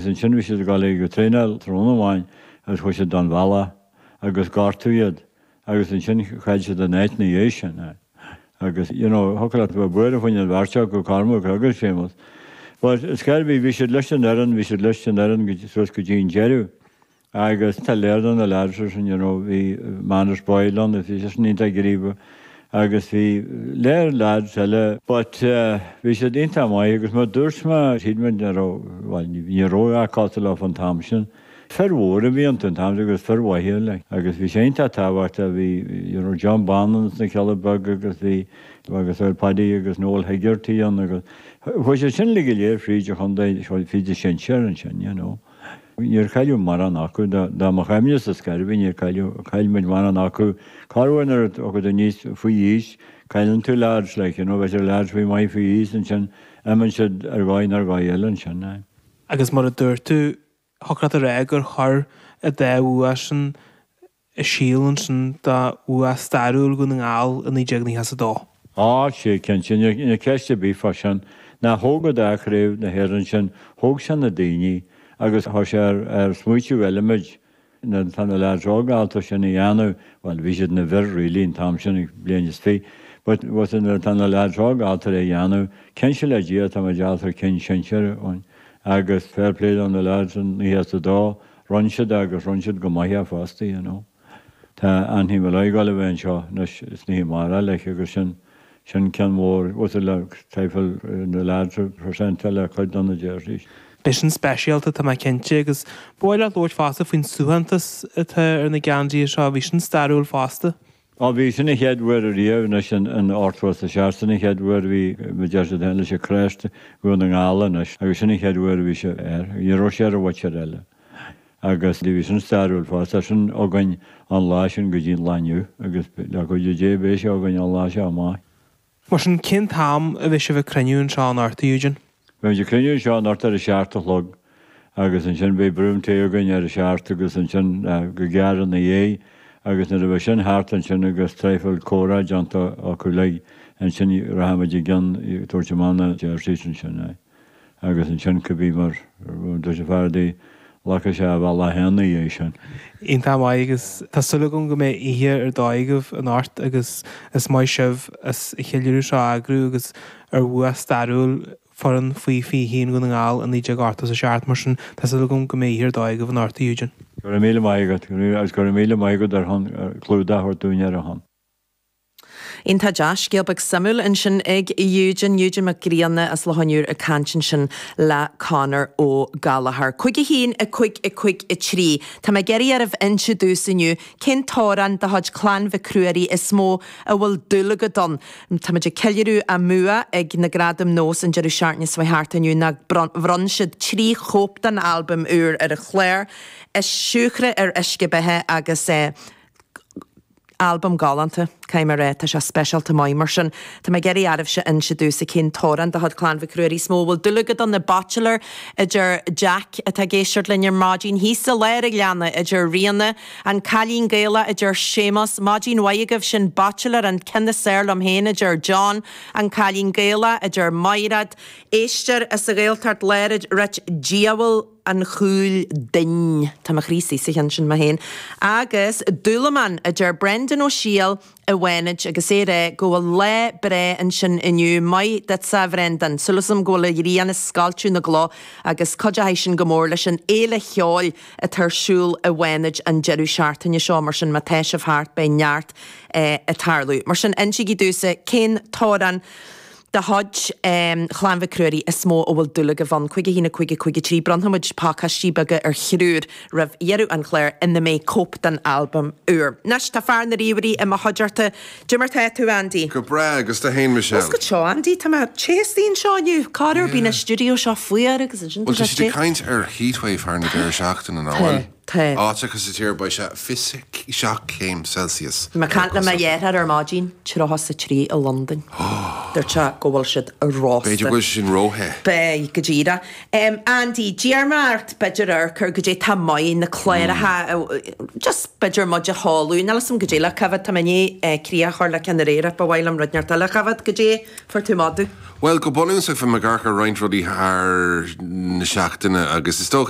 Is ansin a bhí siad ag dul ag traenáil tráthnóna amháin agus chuaigh siad don bhealach agus gortaíodh iad agus ansin chaill siad a n-áit ina dhiaidh sin. Agus you know thiocfadh leat bheith buartha fá choinne an bheirt acu, Cormac agus Séamus. But is gearr a bhí, bhí siad leis an fhoireann, bhí siad leis an fhoireann suas go dtí an deireadh. agus tá léar do na leaids ar sin, you know, bhí Manus Boyle ann, bhí sé sin iontach gníomhach agus bhí léar leaids eile, but bhí siad iontach maith agus mar dúirt mé thíd muid ní raibh, bhuel ní bhí ró a' cárta leo fan t-am sin. Fir mhóra a bhí iontu an t-am sin agus fir mhaithe like, agus bhí sé iontach tábhachtach, bhí, you know, John Bán ann as na Cealla Beaga agus bhí, agus ar Paddy agus Noel Hegarty ann agus chuaigh siad sin uilig go léir fríd an chontae, fríd an sinsear ansin, you know. Níor cailleadh mórán acu. Do mo chuimhnesa ar scor ar bith níor cailleadh, chaill muid mórán acu. Cha raibh an oiread acu do níos faoi aois? Cailleann tú leaids like you know, bheadh siad leaids faoi mhaith faoi aois ansin, imíonn siad ar dhóigh nó ar dhóigh eile ansin, aye. Agus mar a dúirt tú, thiocfadh leat a rá gur chuir an dá bhua sin an síol ansin do bhua stairiúil Dhún na nGall i 1992. Á, sea, cinnte, níl ceist ar bith fá sin. Nó thóg an dá Chraobh na hÉireann sin, thóg sé na daoine agus chuir sé ar smaoitiú eile muid, tá na leaids óga ábalta sin a dhéanamh, bhuel, bhí siad ina bhfir really an t-am sin, bliain is fiche, but tá na leaids óga ábalta é a dhéanamh, cinnte le Dia tá muid ábalta ar cinn sinsir, agus fair play do na leaids in 1992. Rinne siad agus rinne siad go maith é fosta you know. Tá Anthony Molloy ag dul a bheith anseo anois is ní thig mar a leis agus sin, sin ceann mhór uasal le tá sé ag gabháil na lads a presentáil le cuid do na jerseys. Beidh sin speisialta tá mé cinnte agus ba mhaith leat labhairt fosta faoin suaitheantas atá ar na geansaithe seo, bhí sin stairiúil fosta. Á bhí sin an chéad uair riamh anois in ochtó is a seacht, sin an chéad uair bhí mo jersey féin leis an crest Dhún na nGall anois agus sin an chéad uair bhí sé air. Ní raibh sé ar an bhóitsir eile. Agus bhí sin stairiúil fosta. Tá sin againn ón lá sin go dtí an lá inniu agus le cuidiú Dé beidh sé againn ón lá seo amach. Mar sin, cén t-am a bheidh sibh ag cruinniú anseo anocht, a Eugene? Beimid ag cruinniú anseo anocht ar a seacht a chlog agus ansin beidh braon tae againn ar a seacht agus ansin go gearr ina dhiaidh agus nuair a bheidh sin thart ansin agus traidhfil comhrá déanta acu uilig ansin rachaimid i gcionn ag tabhairt amach na jerseys ansin. Aye. agus ansin cibé, mar a dúirt an fear adaí, glacfaidh sé a bhealach fhéin ina dhiaidh sin. Iontach maith agus tá súil agam go mbeidh oíche ar dóigh agaibh anocht agus is maith sibh as an cheiliúradh seo a eagrú agus ar bhua stairiúil foireann faoi 21 Dhún na nGall i 1987 mar sin tá súil agam go mbeidh oíche ar dóigh agaibh anocht a Eugene. Go raibh míle maith agat agus go raibh míle maith agat ar shon clúdach a thabhairt dúinn ar a shon. Iontach deas, scéal beag suimiúil ansin ag Eugene, Eugene Mac Grianna as Loch an Iúir ag caint ansin le Conor Ó Gallachóir. 51, 5, 5, 3. Tá mé ag iarraidh oraibh inse domhsa inniu cén t-amhrán de chuid Chlann Mhic Ruairí is mó a bhfuil dúil agat ann. Táimid ag ceiliúradh a mbua ag na Gradaim Nós an deireadh seachtaine seo a chuaigh thart inniu ná bhronn siad trí chóip den albam úr ar an chlár, siúcra ar uisce beatha agus eh, Albam galánta, caithfidh mé a rá. Tá sé speisialta maith mar sin. Tá mé ag iarraidh oraibhse inse domhsa cén t-amhrán de chuid Chlann Mhic Ruairí is mó a bhfuil dúil agat ann, The Bachelor, a deir Jeaic, atá ag éisteacht linn ar maidin. Thíos i Lár an Ghleanna, a deir Ríona. An Cailín Gaelach, a deir Séamas. Maidin mhaith agaibh, is é an Bachelor an ceann is fearr liom féin, a deir John. An Cailín Gaelach, a deir Maighréad, ag éisteacht sa Ghaeltacht Láir, a rite Diabhal. an chúil duinn. Tá mo chroí istigh sa cheann sin mé féin. Agus dúlamán, a deir Brendan Ó Siail i bhFánaid, agus é ag rá go bhfuil lá breá ansin inniu. Maith duitse, a Bhrendan. Súil agam go bhfuil an ghrian ag scoilteadh na gcloch agus cuideochaidh sin go mór leis an fhéile cheoil atá ar siúl i bhFánaid an deireadh seachtaine seo. Mar sin, má tá sibh thart beidh neart ag tarlú. Mar sin, insígí domhsa cén t-amhrán. de chuid Chlann Mhic Ruairí is mó a bhfuil dúil agaibh ann. Cúig a haon, a cúig, a cúig a trí. Bronnfaimid pacáistí beaga ar thriúr roimh dheireadh an chláir ina mbeidh cóip den albam úr. Anois tá fear na ríomhairí i mo chuideachta. Cad é mar atá tú, Andy. Go breá, agus tú féin, Michelle? Ó goitse, Andy, tá mé te istigh anseo inniu. Corruair bíonn an stiúideo seo fuar agus ansin tá sé te. Bhuel, tá caint ar heatwave thar an deireadh seachtaine, nach bhfuil? Tá. Áiteacha sa tír a bheas sé 27 céim Celsius Bhí mé ag caint le mo dheartháir ar maidin. 33 i Londain. Dúirt sé go bhfuil siad rósta. B'fhéidir go bhfuil sé sin ró-the. Beidh, go díreach. Andy, d'iarr mé ort b'fhéidir amharc ar cad é atá maith, na cláracha just b'fhéidir muid a chomhairliú. Níl a fhios agam cad é le coimhéad. Tá mé i ndiaidh críoch a chur le ceann aréir ach ba mhaith liom rud inteacht eile a choimhéad. Cad é a fuair tú amach domh? Bhuel, go bunúsach bhí mé ag amharc ar roinnt rudaí thar na seachtaine agus is dócha.